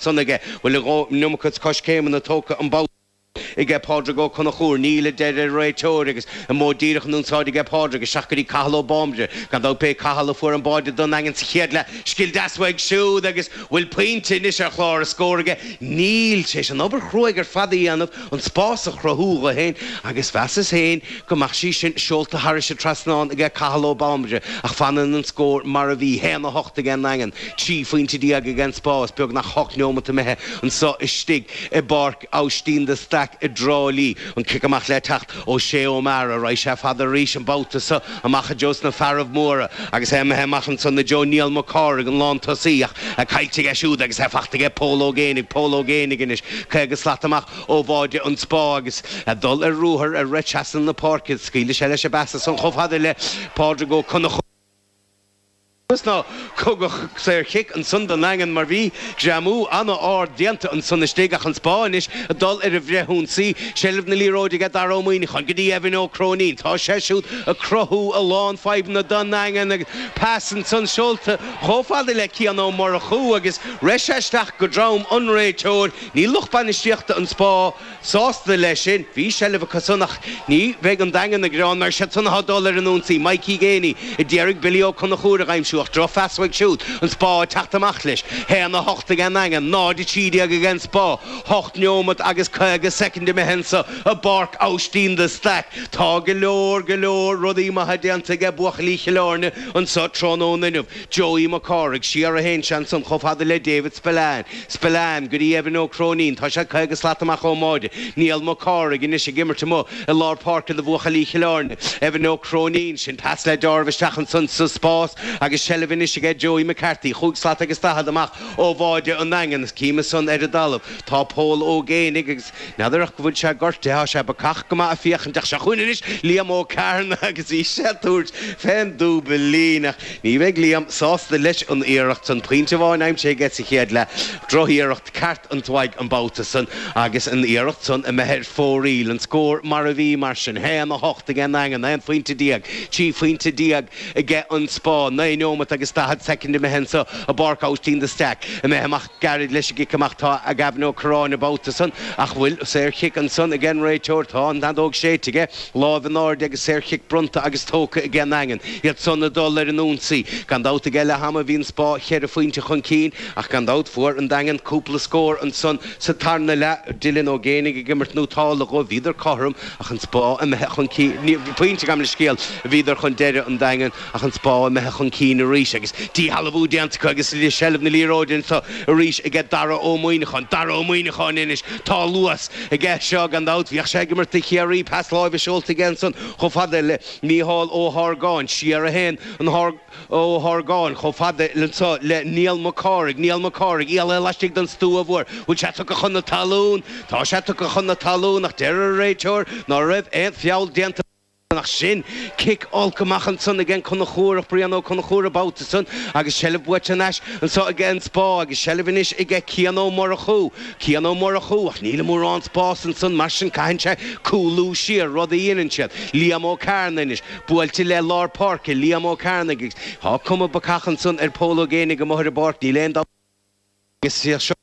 san aige, bhfuil a dhóthain an iomarca coiscéimeanna tógtha an babhta so aige Pádraig Ó Conchúir, níl, a deir an réiteoir, agus an Modh Díreach in únsáid aige Pádraig, isteach go dtí Cathal Ó Bambaire, gan dabht b'é Cathal a fuair an báide don Daingean sa chéad leath, scil deas uaidh siúd, agus bhfuil pointe anois ar chlár a scóir aige, níl, tar éis an obair chruaidh ar fad a dhéanamh, an spás a chruthú dhó féin, agus mheasas féin go mbeadh sí sin seolta thairis an trasnán aige Cathal Ó Bambaire, ach fanann an scór mar a bhí, haon a hocht ag an nDaingean, trí phointe déag ag an Spá, beagnach hocht neomat imithe anso istigh i bPáirc Aibhistín de Staic i dTrá Lí, an cic amach le teacht ó Shay O'Meara. Raghaidh sé fada arís an babhta so. Amach i dtreo sna fearaibh móra, agus é imithe amach ansan i dtreo Niall Mac Cárthaigh an lántosaí ach é caillte aige siúd agus é fachta aige Pól Ó Géinigh, Pól Ó Géinigh anois caoga slat amach ó bháide an Spá agus é ag dul ar ruathar ag rith trasna na páirce, scaoilfidh sé leis an bpas ansan chomh fada le Pádraig Ó Conchúir. Is nár tugadh saorchic ansan don Daingean mar bhí greamú ana-ard déanta ansan istigh ach an Spá anois ag dul ar an bhfrithionsaí, seilbh na liathróide aige Dara Ó Muíneacháin go dtí Evan Ó Cróinín. Tá sé siúd ag cruthú a lán fadhbanna don nDaingean agus pas ansan seolta chomh fada le Cian Ó Murchú agus rith sé isteach go drom an réiteoir. Níl lucht bainistíochta an Spá. sásta leis sin. Bhí seilbh acu san ach ní bheidh an Daingean ag gearán mar siad san athá dul ar an ionsaí. Maidhcí Geaney a d'iarraidh Billy Ó Conchúir a dh'aimsiú ach drochphas uaidh siúd an Spá ag teacht amach leis. hAon a hocht ag an nDaingean, 0 13 ag an Spá. hOcht neomat agus caoga soicind imithe anso i bPáirc Aibhistín de Staic. Tá go leor, go leor rudaí maithe déanta aige buachaillí Chill Airne anso tráthnóna inniu. Joey Mac Cárthaigh, siar a théann sé ansan chomh fada le David Spillane, Spillane go dtí Evan Ó Cróinín, tá sé 50 slat amach ón mbáide, Niall Mac Cárthaigh, anois ag imirt amuigh i lár páirce do bhuachaillí Chill Airne, Evan Ó Cróinín, sin pas le dealramh isteach ansan sa spás agus seilbh anois aige Joey McCarthy, chúig slat agus daichead amach ó bháide an Daingin, is chím ansan ar an dtalamh tá Pól Ó Géinigh agus. N'fheadar ach go bhfuil sé gortaithe, tá sé bacach go maith a' féachaint ach seo chugainn anois Liam Ó Cearnaigh agus bhí sé a' tabhairt fén dúbailín ach ní bheidh Liam sásta leis an iarracht san, pointe amháin aimsithe aige sa chéad leath, droch-iarracht ceart uaidh an babhta san agus an iarracht san imithe ar fóraoil, an scór mar a bhí mar sin, haon a hocht aige an Daingean, aon phointe déag, trí phointe déag aige an Spá, naoi neomat agus daichead soicind imithe anso i bPáirc Austin de Staic, imithe amach. gairid leis an gcic amach atá Gavin Ó Corráin an babhta san ach bhfuil saorchic ansan ag an réiteoir. Tá an fheadóg séidte aige, láimh in airde agus saorchic bronnta agus tógtha aige an nDaingean. Iad san ag dul ar an ionsaí. Gan dabht aige leath ama bhí an Spá cheithre phointe chun cinn ach gan dabht fuair an Daingean cúpla scór ansan sa tarna leath. Dylan Ó Géinigh ag imirt nótálta dhóibh. Bhíodar cothrom ach an Spá imithe chun cinn. Pointe, gabh mo leithscéal, a bhíodar chun deireadh, an Daingean. ach an Spá imithe chun cinn arís agus díshealbhú déanta acu agus i seilbh na liathróide anso arís ag Dara Ó Muíneacháin, Dara Ó Muíneacháin anois, tá luas aige seo gan dabht, bhíodh sé ag imirt do Chiarraí, pas láimhe seolta aige ansan chomh fada le Micheál Ó hArgáin, siar a théann an Ó hArgáin chomh fada anso le Niall MacCárthaigh, Niall MacCárthaigh éalaithe laistigh den stua mhór, bhfuil sé tugtha chun na talún? Tá sé tugtha chun na talún ach deir an réiteoir ná raibh aon feall déanta. Ach sin! Cic olc amach ansan ag an gConchúrach, Brian Ó Conchúir ab out ansan agus seilbh buaite an ais anso ag an Spá agus seilbh anois ag Cian Ó Murchú. Cian Ó Murchú, ach níl mórán spás ansan mar sin caitheann sé cúlú siar, rud a dhéanann siad. Liam Ó Cearna anois, buailte le lár páirce, Liam Ó Cearna agus tá cuma bacach ansan ar Pól Ó Géibheannaigh amuigh ar an bpáirc, níl aon dabht. Is iad seo na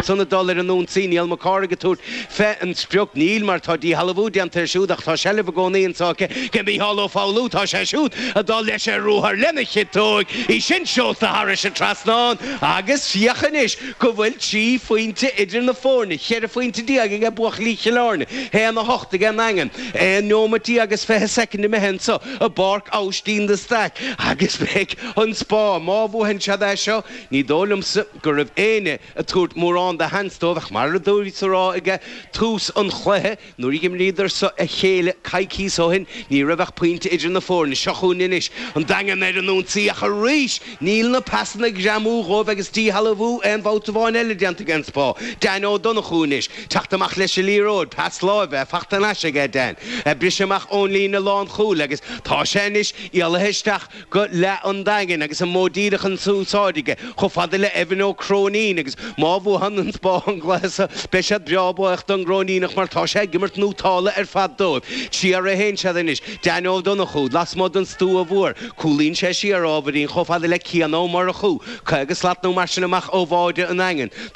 cúiseanna dul ar an ionsaí, Niall Mac Cárthaigh ag tabhairt fé an sprioc, níl, mar tá díshealbhú déanta air siúd, ach tá seilbh i gcónaí anso acu, aige Mícheál Ó Foghlú, tá sé siúd ag dul leis ar ruathar lena chiotóig, í sin seolta thairis an trasnán, agus féach anois go bhfuil trí phointe idir na foirne, cheithre phointe déag age buachaillí Chill Airne, haon a hocht ag an nDaingean, aon neomat déag is fiche soicind imithe anso i bPáirc Aibhistín de Staic, agus beidh. An Spá. Má bhuaitheann siad é seo, ní dóigh liomsa go raibh éinne ag tabhairt mórán de sheans dóibh ach mar a do bhíos ag rá ag tús an chluiche, nuair a d'imríodar so a chéile coicíos ó shin, ní raibh ach pointe idir na foirne. Seo chugainn anois an Daingean ar an ionsaí ach arís níl na pasanna ag greamú dhóibh agus díshealbhú aon bhabhta amháin eile déanta ag An Spá. Dan Ó Donnchú anois. Teacht amach leis an liathróid. Pas láimhe. Faighte an ais aige, Dan. Briseadh amach ón líne lánchúil agus tá sé anois éalaithe isteach. go leath an Daingin agus an modh díreach in úsáid aige, chomh fada le Evan Ó Cróinín, agus má bhuaitheann an Spá an cluiche so, beidh siad breá buíoch don gCróiníneach mar tá sé ag imirt nótálta ar fad dóibh. Siar a théann siad anois. Dan Ó Donnchú, lasmuigh den stua mhór, cúlaíonn sé siar ábhairín chomh fada le Cian Ó Murchú, caoga slat nó mar sin amach ó bháide an Daingin. Tá.